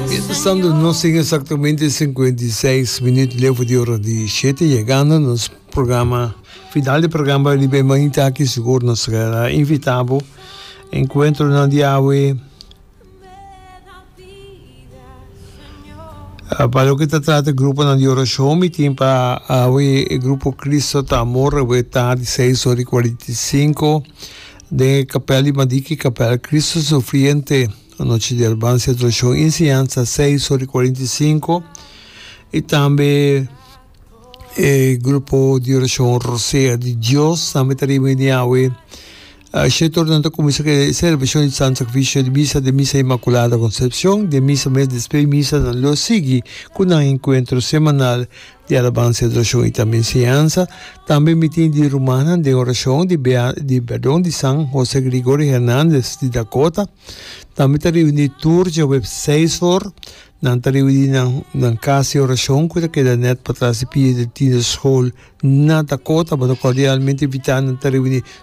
Mientesando nos sin exactamente 56 minuut levo di ora di 7 llegando a nos programa final di programa libe manita aquí seguro nos será invitabo encuentro nan di awe pa lo que ta trata grupo nan di oración mi tin pa awe e grupo Cristo ta amor awe ta di 6 ora y 45 de capel di Madiki capel Cristo sufriente Anochi di Albancia Tradishon i Enseñansa seis ora i kuarenta i sinku i tambe e grupo di orashon Rosea di Dios tambe ta riba ini awe shete ora nan ta kuminsá ku e selebrashon di Santu Sakrifisio di Misa di Misa Inmakulada Konsepshon den misa mes despé misa nan lo sigui ku nan enkuentro semanal di alabansa, adorashon i tambe enseñansa. Tambe mi tin di rumannan den orashon di di perdon di San Jose Gregorio Hernandez di Dakota. Tambe ta reuní tur djaweps seis or. Nan ta reuní na nan kas di orashon ku ta keda nèt patras di pie di Tienerskool na Dakota. Bo ta kordialmente invitá nan ta reuní.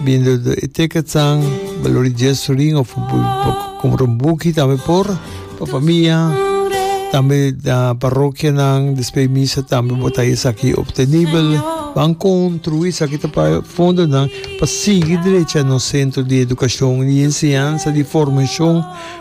Bindo do e tekatsan balor di dies sorin of bo bo compra un buki tambe por pa famia tambe da parokianan despe e misa tambe bo ta esaki obtenibel ban construi esaki ta pa fondonan pa sigui derecha nos centro di educacion y enseñanza di formacion.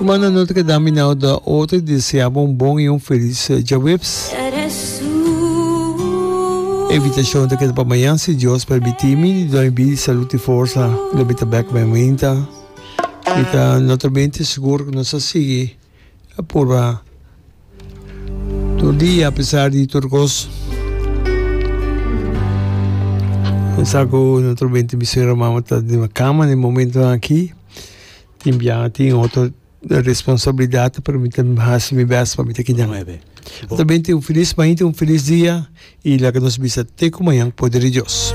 Rumana no ta keda minau da otro y desea bo un bon y un feliz djaweps. E invitacion ta keda pa mañan si Dios permiti mi di doi bida y salud y forsa lo mi ta bek men winta. Mi ta notabente sigur cu nos a sigui purba tur dia apesar di tur cos. Mi sa cu naturalmente mi suegra mama ta den cama na e momentonan aki. Tin bia, tin otro responsabilidad pero mi ta haci mi best pa mi ta kina nan. Bo ta bini tin un feliz maña, tin un feliz dia y laga nos bisa te cu maña poder di Dios.